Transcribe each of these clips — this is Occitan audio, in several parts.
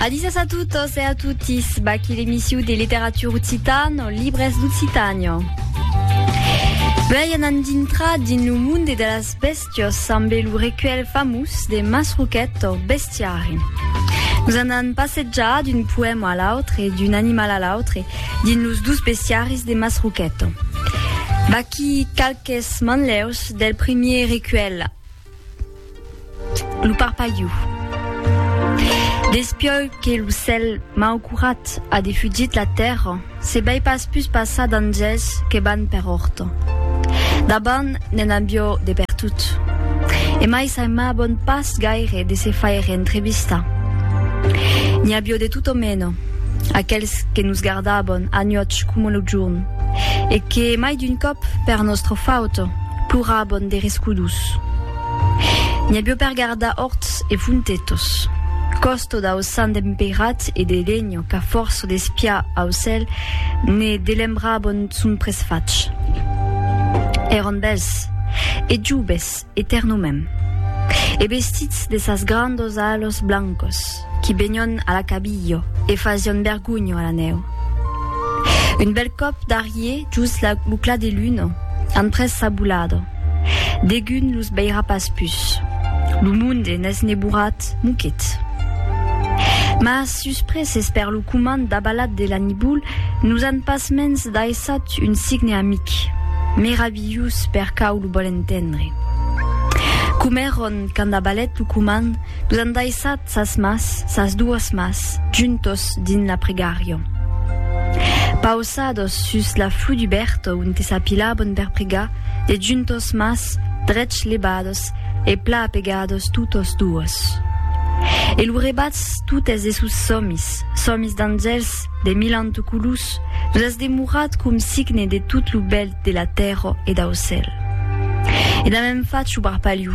Adisas a totes e a totis, baqui l'emissiu de literatura occitana, libres d'Occitània. Vei anant dintra dins lo monde de las bèstias amb lo recuèlh famós de Masroquet o Bestiari. Nos anant passejar d'un poèma a l'autre, d'un animal a l'autre, dins los dus bestiaris de Masroquet. Vaqui qualques manlèus del premier recuèlh Lo parpalhu. Despieu que lo cèl mau curat a defugit la tèrra, se bai pas pus passar d'anjèls que van per òrta. D'abant ne'n avió de pertot. E mai s'aimabon pas gaire de se faire entrevistar. N'i avió de tot o mena, aquèls que nos gardabon anuòch coma lo jorn, e que mai d'un còp per nòstra fauta, Plorabon der escudus. N'i avió per gardar orts e fontetos. Còsto dau sant empeirat e de Lenio qu'a fòrça d'espiar au cèl ne delembrabon son presfach. Èron bèls, e joves, etèrnomèm. E vestits de sas grandos alos blancos. qui benion a la cabilho e fasion bergunho a la nèu. Un bèl còp d'arriè just la, lo clar de luna, an pres sa bolada. Degun los veirà pas pus. Lo monde n'es neborat, moquet. Mas suspreses per lo comand dabalat de la nibol, nos an pasmens daissat un signe amic, meravilhós per cau lo vòl entendre. Comèron quand dabalèt lo comand, Los an daissat sas mas, sas doas mas, juntos dins la pregària. Pausados sus la flu du bèrto onte s'apilabon per pregar, de juntos mas, drech lebados e pla apegados totos doas. E lu rebats totes de sos sòmis, sòmis d'angèls de milanto colus, los as demorat com signe de tot lu bèl de la tèrra e dau cèl. E damb un fach ubarpaliu,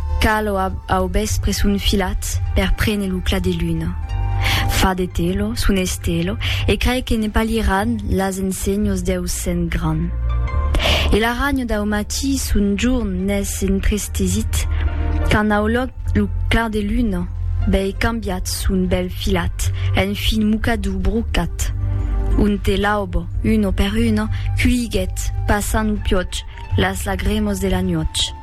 Cal o au vèspre son filat per prene lo clar de luna. Fa de telo, son estelo, e crai que ne palhiran las ensenhos deu sent gran. E l'arranho dau matí son jorn n'es entrestesit quand au lòc lo clar de luna vei cambiat son bèl filat en fin mocador brocat, onte l'aubo, uno per uno, culhiguèt, passant au piòch, las lagremos de la nuòch.